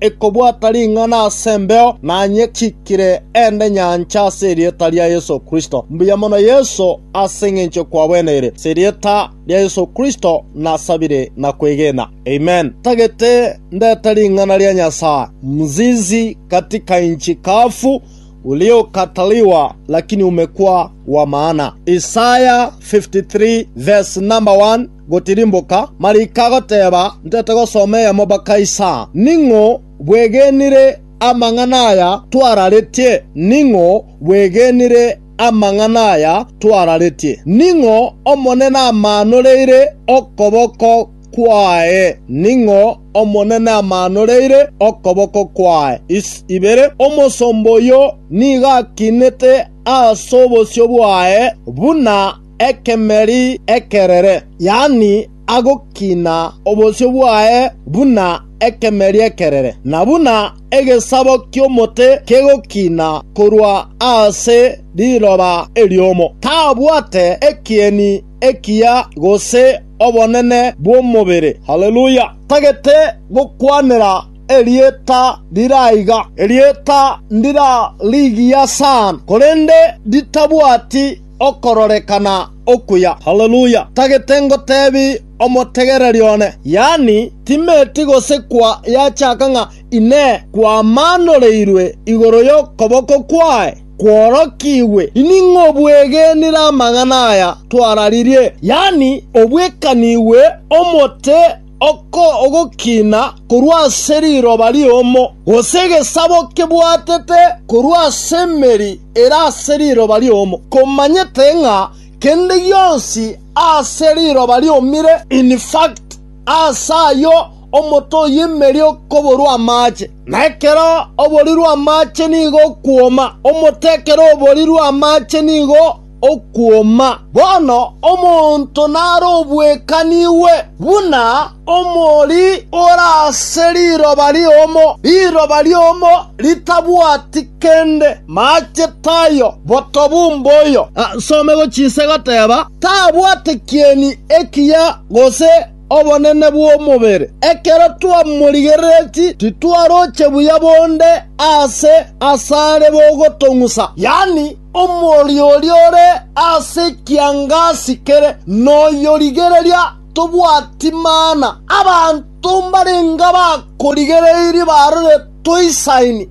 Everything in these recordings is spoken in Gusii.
ekobwata ring'ana as'embeo, nanyechikire ende nyancha as'erieta ria Yeso Kristo. Mbuya mono Yeso as'eng'encho kwagweneire, as'erieta ria Yeso Kristo nasabire na kwegena. Amen. Ntagete ndete ring'ana ria Nyasaye, Mzizi katika nchi kavu uliokataliwa lakini umekua wa maana. Isaya 53 vs. 1. gotirimboka, Marika agoteeba, Ntete gosoma eyemo mpaka isa. Ning'o bwegenire amang'ana aya twararetie? Ning'o bwegenire amang'ana aya twararetie? Ning'o Omonene amaanoreire okoboko kwaye? Ning'o Omonene amaanoreire okoboko kwaye? Is. Ibere, Omosomba oyio nigo akinete as'obosio bwaye, buna ekemeri ekerere, yaani agokina obosio bwaye buna ekemeri ekerere, na buna egesabo ki'omote kegokina korwa ase riroba eriomo. Tabwate ekieni ekiya gose obonene bw'omobere. Haleluya! Tagete gokwanera erieta rire aiga. Erieta ndirarigiya sana, korende ritabwati okororekana okuya. Haleluya! Tagete ngotebi omotegereri one, yaani timeti gose kwa yachaka ng'a Inee, kwamanoreirwe igoro y'okoboko kwaye kworokigwe? Ining'o obwegenire amang'ana aya twararirie, yaani obwekanigwe omote Oko ogokina korwa ase riroba riomo, gose egesabo kebwatete korwa ase emeri ere ase riroba riomo, komanyete ng'a kende gionsi ase riroba riomire, in fact, aase ayio omote oy'emeri okoborwa amache, na ekero oborirwe amache nigo okwoma, omote ekero oborirwe amache nigo okwoma. Bono omonto narobwekanigwe buna omori ore ase riroba riomo, riroba riomo ritabwati kende, maache tayo, botobu mboyo. Asomegwe chinswe goteba, Tabwate kieni ekiya gose obonene bw'omobere. Ekero twamorigerereti titwaroche buya bonde aase asare bogotong'usa, yaani omorio oria ore ase ekiangasi kere noyorigereria tobwati mana. Abanto mbarenge abakorigereirie barore toisaini.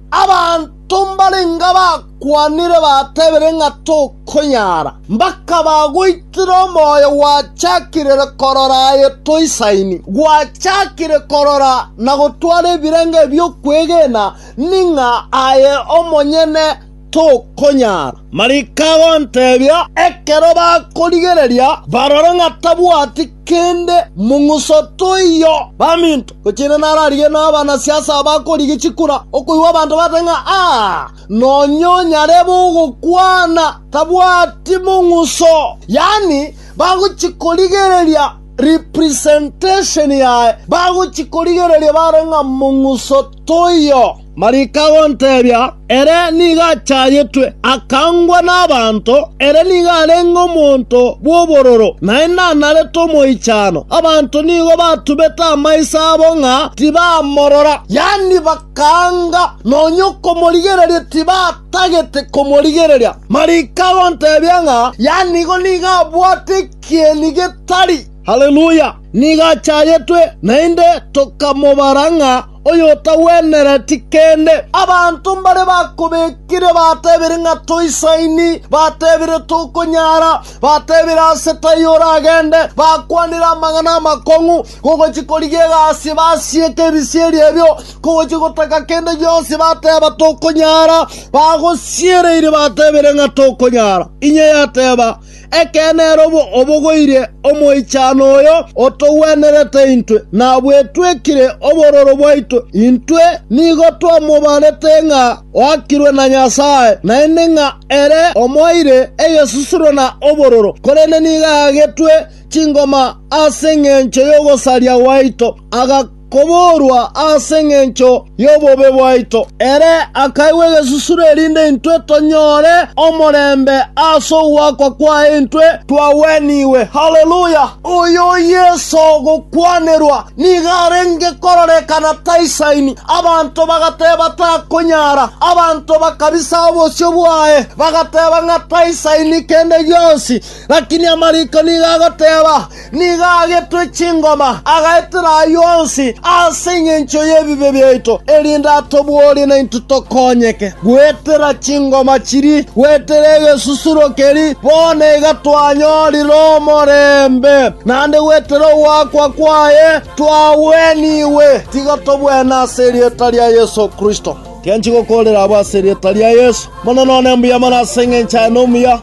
Tombarenga bakwanire batebire ng'a tokonyara, mbakabagoitera omoyo gwachakirire korora aye toisaini, gwachakire korora na gotwara ebirengo ebi'okwegena, ning'a aye omonyene tokonyara. Mariko agontebia, ekero bakorigereria barore ng'a tabwati, kende mong'uso toiyo. Baminto, gochia ere nararigwe nabanasiasa abakorigia chikura okoigwa abanto bateba ng'a aa, nonya onyarebe ogokwana tabwati mong'uso, yaani bagochia korigereria representation yaye, bagochia korigereria bare ng'a mong'uso toiyo. Marika agontebia, ere nigo achayetwe, akangwa n'abanto, ere nigo arenge omonto bw'obororo, naende anarete omoichano. Abanto nigo batubete amaiso abo ng'a tibamorora, yaani bakaanga nonya okomorigereria tibatagete komorigereria. Marika agontebia ng'a yaani igo nigo abwate ekieni getari. Haleluya! Nigo achayetwe, naende tokamobara ng'a oyotagwenereti kende. Abanto mbare bakobekire batebire ng'a toisaini, batebire tokonyara, batebire ase taiyo oragende, bakwanire amang'ana amakong'u, kogochia korigia egasi basieke ebisieri ebio, kogochia gotaka kende gionsi bateba tokonyara, bagosiereiri batebire ng'a tokonyara. Inye yateba, Ekeene ere obogoire omoichano oyo otogwenerete intwe, na bwetwekire obororo bwaito. Intwe nigo twamobarete ng'a oakirwe na Nyasae, naende ng'a ere omoeire egesusuro na obororo, korende nigo agetwe chingoma as'engencho y'ogosaria gwaito, aga koboorwa ase engencho y'obobe bwaito. Ere akaigwa egesusuro erinde intwe tonyore omorembe ase ogoakwa kwaye intwe twagwenigwe. Haleluya! Oyo Yeso ogokwanerwa nigo arenge kororekana taisaini. Abanto bagateba takonyara, abanto bakabisa obosio bwaye, bagateba ng'a taisaini kende gionsi. Lakini amariko nigo agoteba, Nigo agetwe chingoma, agaetera ayio onsi ase engencho y'ebibe biaito, erinde atoborie naintwe tokonyeke. Goetera chingoma chiri, goetera egesusuro keri, bono iga twanyorire omorembe, naende goetera ogoakwa kwaye twagwenigwe. Tiga togwene ase erieta ria Yeso Kristo. Tiganchi gokoorera abwo ase erieta ria Yeso. Monene one mbuya mono ase engencho yaye nomuya.